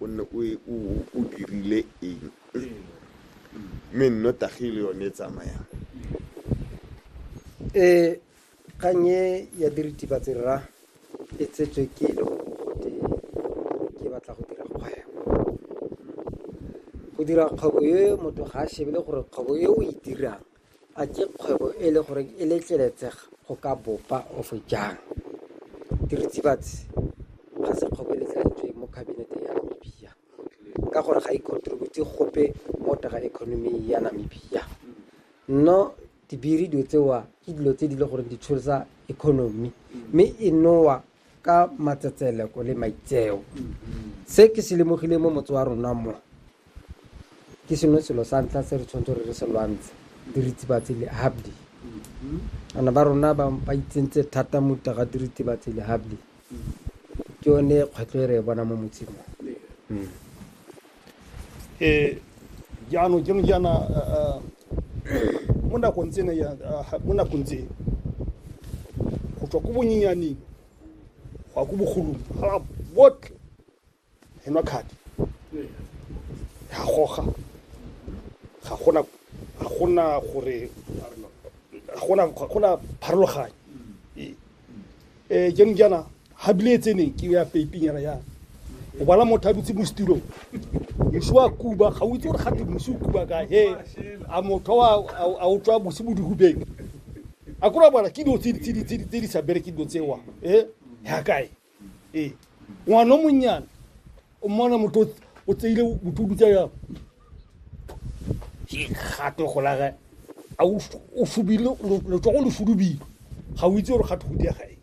o nne o e- o o- o dirile eng mme nnotagi le yone e tsamayang um kgang e ya diritibatsi rra e tsetswe ke e le gore ke batla go dira kgwebo go dira kgwebo e motho ga a shebele gore kgwebo e o e dirang A ke kgwebo e le gore e letleletsega go ka bopa of jang? Diritibatsi ga se kgwebo e letleletsweng mo kabineteng ya Namibia ka gore ga e contribute gope mo taga economy ya Namibia. No dibiri dilo tsewa ke dilo tse di le gore di tsholisa economy mme e nowa ka matsetseleko le maitseo se ke se lemogileng mo motse wa rona mo ke sengwe selo sa ntlha se re tshwanetse re re se lwantshe diritibatsi le habdi ana ba rona ba ba itsentse thata mo taga diritibatsi le habdi ke yone kgwetlho e re e bona mo motseng o. ee jaanong jeng jaana mo nakong tsene mo nakong tse go tswa ko bonyenyaneng go ya ko bogolong ga botlhe e nwa kgadi ga goga ga gona ga gona gore ga gona ga gona pharologanyo um jaanong jaana ga bile e tseneng ke ya peipinyana yana o bala motho a dutse mo setirong mosi wa kuba ga o itse gore gate mosi o kuba ka he a motho a o tswa mosi mo dihubeng a kore bona ke dilo tse di sa bereke dilo tsewa e ya kae ee ngwana o monnyane o mmona motho o tseile motho o dutsa ya ke gato go laga a o f- o fubile letsogo le fudubile ga o itse gore gato go diega eng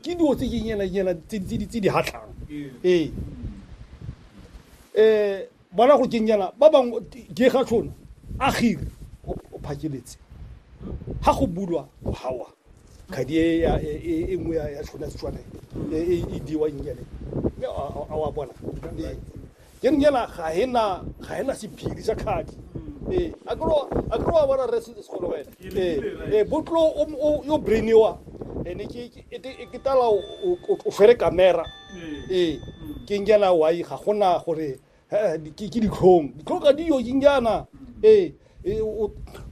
ke dilo tse ke nyana nyana tse di- tse di- tse di hatlhang ee um bona go keng nyana ba bangwe ke ga tshone a gire o o phakeletse ga go bulwa mogawa kgadi e ya- e- e- e nngwe ya ya tlhona setswana e e e diwang nyele mme a a- a wa bona Ee. ke re nyela ga ena ga ena sephiri sa kgadi ee a kere wa- a kere wa bona re setse segolo wena ee ee botlo o m- o- yo brainiwa ene ke ke- e te- e ke tala o- o o- o fere kamera ee ke nyela wai ga gona gore ke ditlhong ditlhong ga diyo ke njana ee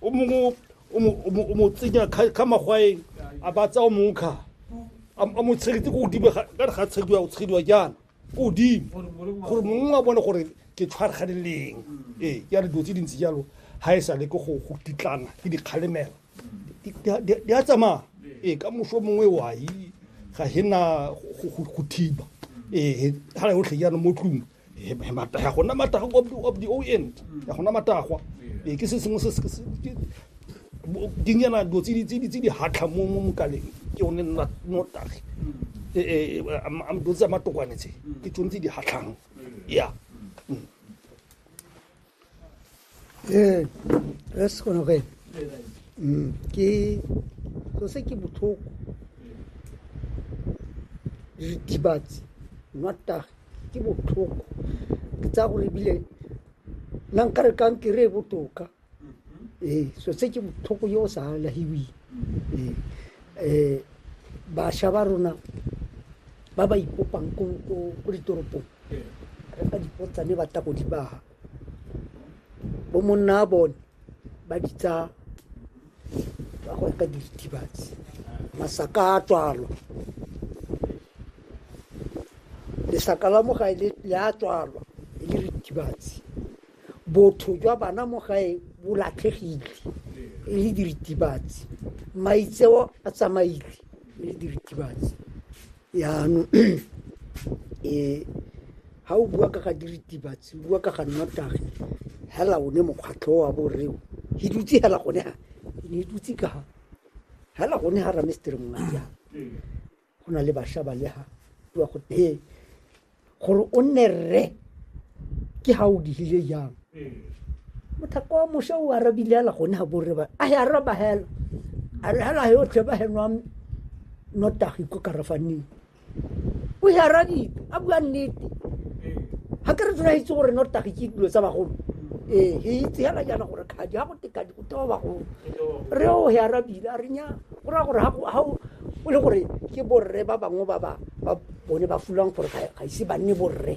o mongwe o mo tsenya ka magwaeng a ba tsaya o mongwe kga a mo tshegetse ko godimo ka re ga tshegediwa o tshegediwa jaana ko godimo gore mongwe a bone gore ke tshwargane leng ee ke a re dilo tse dintsi jalo ga e sa le ke go titlana ke dikgalemelo di a tsamaya ee ka moso mongwe wai ga hena go thiba ee ga re otlhe jaanong mo tlong ga gona matagwa of the o end ga gona matagwa ee ke se sengwe se dinyana dilo tse di hatlha mo mokaleng ke one notagi ee dilo tsa matokwane tse ke tsone tse di hatlhang ya ee re se kgone go ena ke so se ke botlhoko dibatsi nwatage ke botlhoko ke tsaya gore ebile nna nka re kankere e botoka ee so se ke botlhoko yo o sa alahiweng ee um bašwa ba rona ba ba ipopang ko ko- ko ditoropong re fa dipotsane ba tla go di baga bo monna a bone ba di tsaya ba go reka diritibatsi masaka a tswalwa lesaka la mo gae le le a tswalwa e le ritibatsi botho jwa bana mo gae bo latlhegile e le diritibatsi maitseo a tsamaile e le diritibatsi Yanong ha o bua ka ga diritibatsi, o bua ka ga nnotagi, hela one mokgwatlho o wa borre o, he dutse hela gone ha, ke ne dutse ka ha, hela gone ha Ramestere Mongatiana, go na le basha ba le ha, bua go teng. gore o nne rre ke ga o digile jang mothako wa mosha o arabile ala gone ga borre ba a ya araba hela a re hela yotlhe ba henwa notagi ko karafaneng o e arabile a bua nnete ga ke re tsena itse gore notagi ke dilo tsa bagolo ee he itse hela jaana gore kgadi ga go tekadi go tewa bagolo re o he arabile a re nya Go raya gore ga o le gore ke borre ba bangwe ba ba bone ba fulwang gore ga ise ba nne borre.